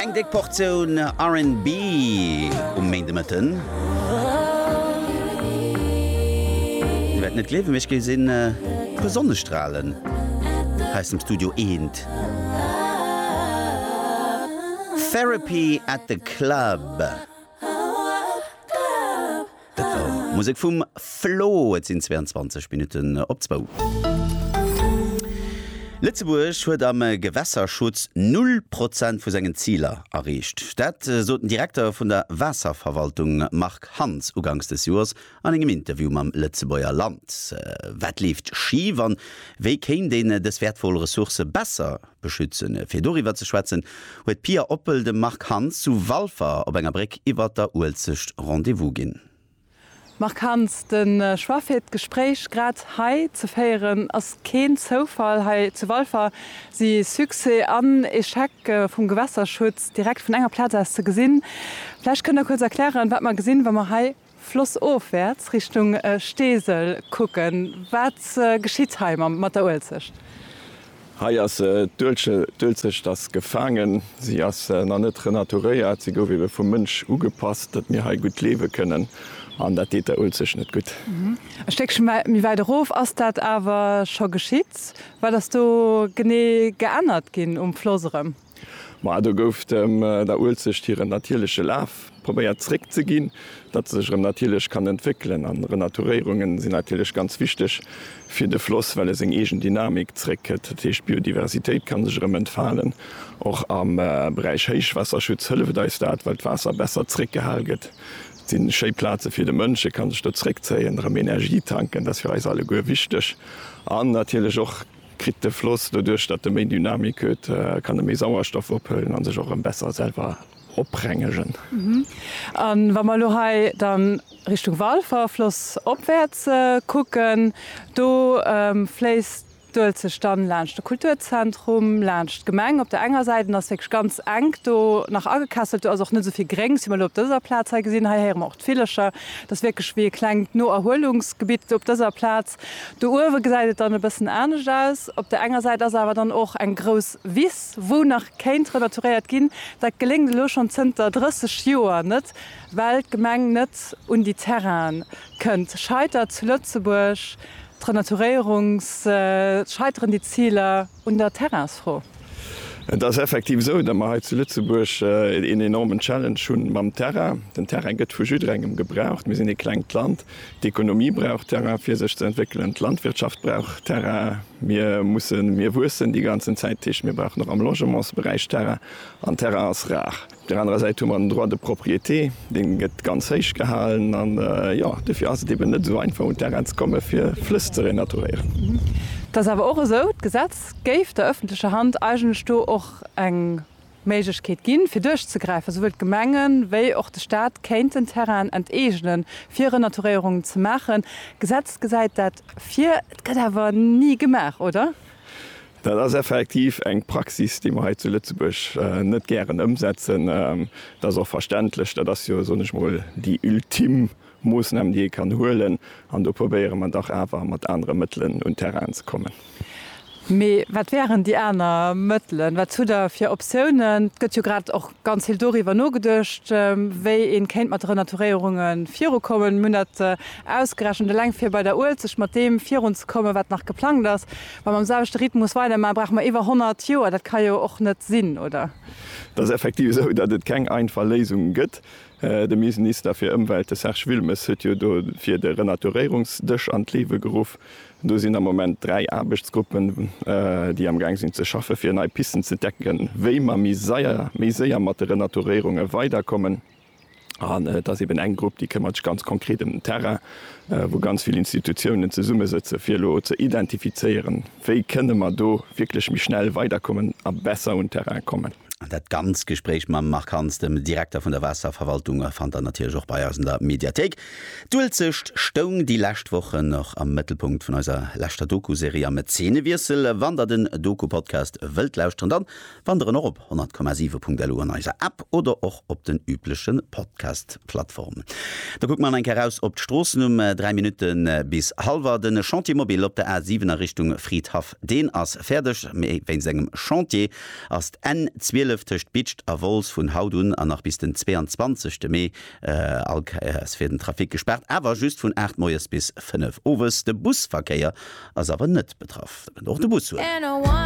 Eng déck Portioun RnB um Méindemëtten. Dir wäert net gleewen, mee ech géif een puer Sonnestralen hei aus dem Studio eent. Therapy at the Club. Musek vum Flo. Et sinn 22 Minutten op zwou. Lëtzebuerg huet am Gewässerschutz null Prozent vu sengen Ziler erreecht. Dat sot den Direkter vun der Waasserverwaltung Marc Hands uganks des Joers an engem Interview mam Lëtzebuerger Land. Wat leeft schif an wéi kéint een dës wäertvoll Ressource besser beschützen. Fir doriwwer ze schwätzen, huet d'Pia Oppel dem Marc Hanz zu Walfer op enger Bréck iwwer der Uelzecht Rendez-vous ginn. Marc Hanz, de Choix fir d'Gespréich grad hei ze féieren ass keen Zoufall. Hei zu Walfer si Succès an Echec vum Gewässerschutz direkt vun enger Plaz aus ze gesinn. Vläicht kënnt Der kuerz erklären, wat mer gesinn, wa mer hei flossofwäerts Richtung Steesel kucken. Wat geschitt hei mat der Uelzecht? Hei ass d'Uelzecht ass gefaangen. Si ass nach net renaturéiert. Si gouf ebe vum Mënsch ugepasst, datt mir hei gutt liewe kënnen. An dat deet der Uelzecht net gutt. E Stéckche méi wäit erof ass dat awer scho geschitt. Wat ass do genee geännert ginn um Floss erëm? Ma do gouf dem der Uelzecht hiren natierleche Laf probéiert zréck ze ginn, datt se sech erëm natierlech kann entwéckelen. An Renaturéierunge sinn natierlech ganz wichteg fir de Floss, well e seng eegen Dynamik zréck kritt. Dat heescht, d'Biodiversitéit kann sech erëm entfalen. Och am Beräich Héichwaasserschutz hëlleft eis dat, well d'Waasser besser zréck gehal gëtt. Et sinn schéi Plaze fir de Mënsch, e kann sech do zréck zéien, erëm Energie tanken, dat ass fir eis alleguer wichteg. An natierlech och Kritt de Floss, doduerch datt e méi Dynamik huet, kann e méi Sauerstoff ophëllen a sech och erëm besser selwer oprengegen. A wa mer elo hei dann Richtung Walfer, Floss opwäerts, kucken, do fléisst d'Uelzecht dann laanscht de Kulturzentrum, laanscht d'Gemeng op der enger Säit an ass wierklech ganz enk do nach agekesselt. Do ass och net esou vill Gréngs, wéi mer elo op dëser Plaz hei gesinn. Hei héiere mer och d'Villecher. Dat ass wierklech wéi e klengt Noerhuelungsgebitt op dëser Plaz. Do uewe gesäit et dann e bëssen anescht aus. Op der enger Säit ass awer dann och eng grouss Wiss, wou nach kéint renaturéiert ginn. Dat geléngt elo schonn zënter 30 Joer net, well d'Gemeng net un déi Terrainen kënnt. Scheitert zu Lëtzebuerg d'Renaturéierungs-, scheiteren déi Ziler? Un der Terrainsfro. Et ass effektiv esou, datt mer hei zu Lëtzebuerg een enormen Challenge hu mam Terrain. Den Terrain gëtt vu jidderengem gebraucht. Mir sinn ee klengt Land. D'Ekonomie brauch Terrain, fir sech ze entwéckelen. D'Landwirtschaft brauch Terrain. Mir mussen, mir wuessen déi ganzen Zäit. Dat heescht, mir brauchen och am Logementsberäich Terrain. An Terrain ass rar. Op där anerer Säit hu mer den Droit de propriété, dee gëtt ganz héich gehalen. An jo, dofir ass et eben net esou einfach, un d'Terrainen ze kommen, fir Flëss ze renaturéieren. Et ass awer och esou, d'Gesetz géif der öffentlecher Hand eigentlech do och eng Méiglechkeet ginn, fir duerchzegräifen. Esouwuel d'Gemenge wéi och de Stat kéinten Terrainen enteegnen, fir Renaturéierungen ze maachen. D'Gesetz gesäit dat vir, et gëtt awer ni gemaach, oder? Dat ass effektiv eng Praxis, déi mer hei zu Lëtzebuerg net gären ëmsetzen. Dat ass och verständlech. Dat ass jo, soen ech mol, déi ultim Moossnam, déi ee kann huelen. An do probéiere mer dach awer mat anere Mëttelen un d'Terrainen ze kommen. Mee wat wären déi aner Mëttelen? Wat hutt Der fir Optiounen? Et gëtt jo grad och ganz vill doriwwer nogeduecht, wéi ee kéint mat Renaturéierunge virukommen. Mir hunn dat ausgerechent, eleng fir bei der Uelzecht mat deem virunzekommen, wat nach geplangt ass, Wa mer am selwechte Rhythmus weidermaachen, brauche mer iwwer 100 Joer. Dat ka jo och net sinn, oder? Et ass effektiv esou, datt et keng einfach Léisung gëtt. De Minsnister fir Ëmwelt, de Serge Wilmes, huet jo dofir de Renaturéierungsdësch an d'Liewe geruff. Do sinn am Moment dräi Aarbechtsgruppen, déi am Gaang sinn ze schaffe fir nei Pisten ze decken, wéi mer méi séier mat de Renaturéierunge weiderkommen. An et ass eben eng Grupp, déi këmmert sech ganz konkret ëm den Terrain, wou ganz vill Institutiounen zesummesëtzen, fir elo ze identifizéieren, wéi kënne mer do wierklech méi schnell weiderkommen a besser un d'Terraine kommen. An dat ganzt Gespréich mam Marc Hans, dem Direkter vun der Waasserverwaltung, fannt der natierlech och bei eis an der Mediathéik. D'Uelzecht stoung déi lescht Wochen och am Mëttelpunkt vun eiser leschter Doku-Serie am Zenewiessel. Wann der den Doku-Podcast wëllt lauschteren, dann Wanderen och op 100,7.lu an eiser App oder och op den üblechen Podcast-Plattformen. Da kucke mer an eng Kéier raus op d'Stroossen um 3 Minutten bis halwer. Den Chantier Mobile op der A7 a Richtung Fridhaff deen ass fäerdeg, mee wéinst engem Chantier ass d'N 12 tëscht Bitscht a Wolz vun haut un an nach bis den 22 Mee all Kéiers fir den Trafic gespaart, awer just vun 8 Moies bis 5 Owes. De Busverkéier ass awer net betraff.